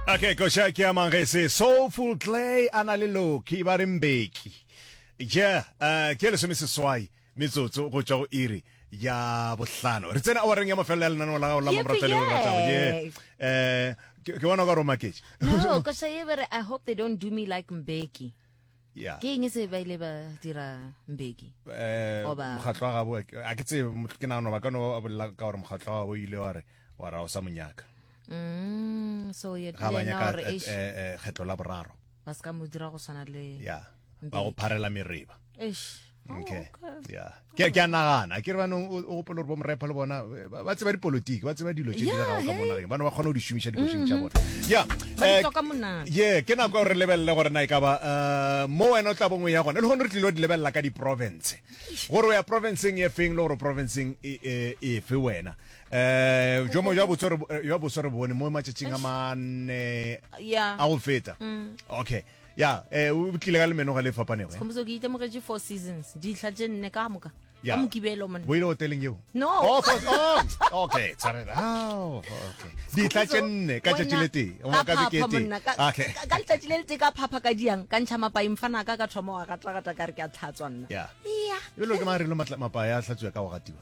okay koša ke a mang ge se soulful clay a na le loki ba re mbeki ja um ke lesome seswai metsotso go tšwa go iri ya bohlano re tsena awareng ya mafelelo ya lenaneo la gago la mamorata le ratago ye um ke bona ka romaketše no koša ye bere i hope they don't do me like mbeki ke eng se ba ile ba dira mbeki eh, oba mokgatlo wa gabo a ke tsebe ke nagano ba ka no bolela ka gore mokgatlo wa gabo ile wa re wa ra o sa monyaka mm, so ye ga ba nyaka eh, eh, kgetlo la boraro ba se ka mo dira go tshwana le ya ba go pharela mereba eish Oh, okay yeah ke ke nagana ke re bana o gopola gore bo mrepa le bona eh, ba tseba dipolotiki ba tseba dilo tse di dirago ka mo nageng bana ba kgona go di šomiša dikošing tša mm-hmm. bona ya eh, ye ke nako gore lebelele gore na e ka ba eh, mo wena o tla bongwe ya gona le gone re tlile di lebelela ka diprovince gore o ya provinceng e feng le gore provinceng e, e, e fe wena um jo mongwe jwa boso re bone mo matšatšing a manne a go feta mm. okay ya eh, o tlile ka lemenoga le fapanego eh? Khomotso ke itemogetše four seasons dihla tše nne ka moka ka mokibelo mone boile hoteleng eo no oh, oh, okay tshwarela oh, okay dihla tše nne ka tšatši le tee o maka beke e tee okay ka letšatši le le tee ka phapha ka diang ka ntšha mapaeng fana ka ka thoma wa gatagata ka re ke a tlhatswa nna ya ya e lo ke mang re lo mapaya a hlatswa ka go gatiwa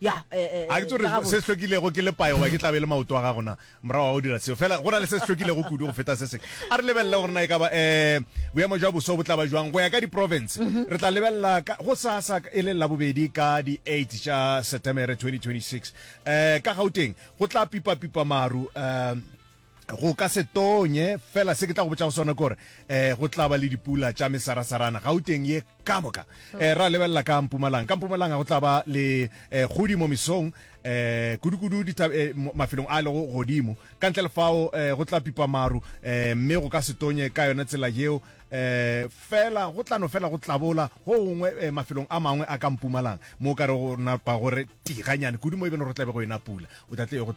ya eh, eh, a ke tsore eh, se se hlokilego ke lepae goba ke tlabe le maoto a gago na morago ga go dira seo fela go na le se se hlokilego kudu go feta se seng a re lebelele gore na e kaba um boemo jwa boso bo tlaba jwang go ya ka diprovince mhm. re tla lebelela go sasa e le labobedi ka di-eight tša setemere 2026 um ka gauteng go tla pipapipa maru um Go ka se tonye, fela se ke tla go botša go sona ke gore um go tla ba le dipula tša mesarasarana gauteng ye ka moka. Um ra lebelela ka mpumalanga, ka mpumalanga go tla ba le um kgodi mo mesong, um kudukudu um mafelong a lego godimo. Ka ntle le fao um go tla pipa maru, um mme go ka se tonye ka yona tsela yeo, um fela go tla no fela go tlabola go gongwe um mafelong a mangwe a ka mpumalanga, mo o ka re go napa gore tiganyane kudu mo e beno gore go tla be go ena pula. O tla tle go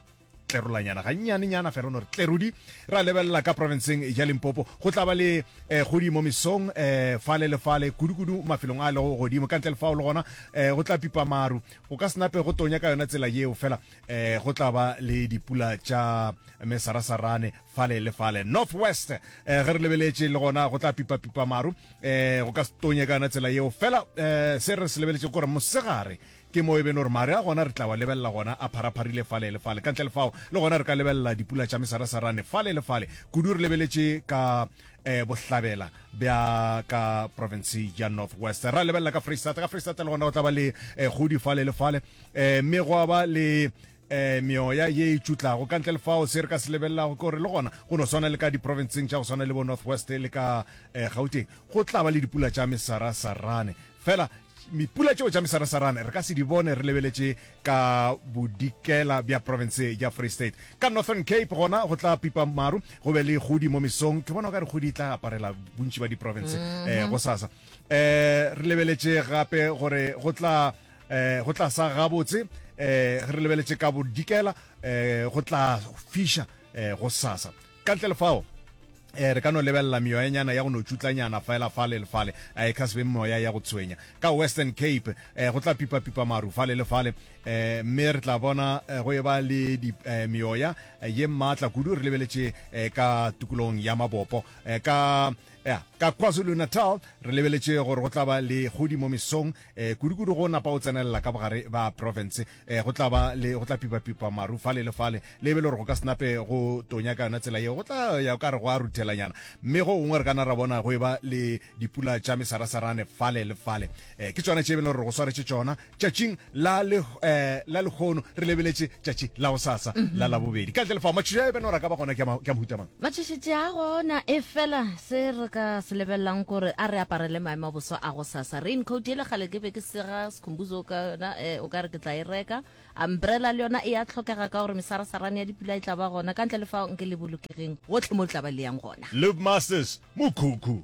tlerolanyana gannyanenyana fela no re tlerudi ra lebelela ka provinceng ya limpopo go tla ba le eh, kgodi mo mesong eh, fale le fale kudukudu mafelong a lego godimo ka ntle le fao le gona eh, go tla pipa maru go ka senape go tonya ka yona tsela yeo fela eh, go tla ba le dipula tša mesarasarane fale le fale north west eh, ge re lebeletše le gona go tla pipa pipa maru eh, go ka se tonya ka yona tsela yeo fela eh, se re se lebeletše kore mosegare Ke mo e beno re mare a gona re tla wa lebelela gona a pharapharile fale le fale. Ka ntle le fao, le gona re ka lebelela dipula tša mesarasarane fale le fale, kudu re lebeletše ka eh, bohlabela bja ka province ya North West. Ra lebelela ka Freistata, ka Freistata le gona go tla ba le eh, kgodi fale le fale, eh, mme gwa ba le eh, meoya ye e tšutlago. Ka ntle le fao, se re ka se lebelelago ke gore le gona go no swana le ka diprovinceng tša go swana le bo North West le ka eh, Gauteng, go tla ba le dipula tša mesarasarane. Fela Mipula tšeo tša mesarasarane re ka se di bone re lebeletše ka bodikela bja province ya Free State. Ka Northern Cape gona go tla pipa maru go be le kgodi mo mesong. Ke bona o ka re kgodi e tla aparela bontši ba diprovince eh, go sasa. Eh, re lebeletše gape gore go tla eh, go tla sa gabotse eh, re lebeletše ka bodikela eh, go tla fiša eh, go sasa. Ka ntle le fao, um re ka no lebelela meyoyanyana ya go no tšutlanyana fela fale le fale, um e ka se be meoya ya go tshwenya. Ka Western Cape, um go tla pipapipa maru fale le fale, um mme re tla bona go eba le di, um meoya ye maatla kudu re lebeletše um ka tukulogong ya mabopo. Um ka, ya, ka KwaZulu-Natal re lebeletše gore go tla ba le kgodi mo mesong, um kudukudu go napa o tsenelela ka bogare bja profense. eh, go tla ba le go tla pipapipa maru fale le fale le be le gore go ka senape go tonya ka yona tsela yeo go tla ya ka re go a ruthelanyana mme go gongwe re kana ra bona go e ba le dipula tša mesarasarane fale le fale um ke tsona tše be le gore go swaretše tsona tšatšing la eh, lekgono re lebeletše tšatši la go sasa mhm. la labobedi ka ntle lefa matšhišo a e beno ra ka ba gona ke a mohutamang matšhišitše a gona e fela se re ka se lebelelang kore a re aparele maemo a boso a go sasa rain coat e le gale ke be ke sega Khumbuzo ka yona eh, o ka re ke tla e reka umbrella le yona e ya tlhokega ka gore mesarasarane ya dipula e tla ba gona ka ntle le fa nke le bolokegeng gotlhe mo le tla ba le yang gona Live Masters, Mukuku.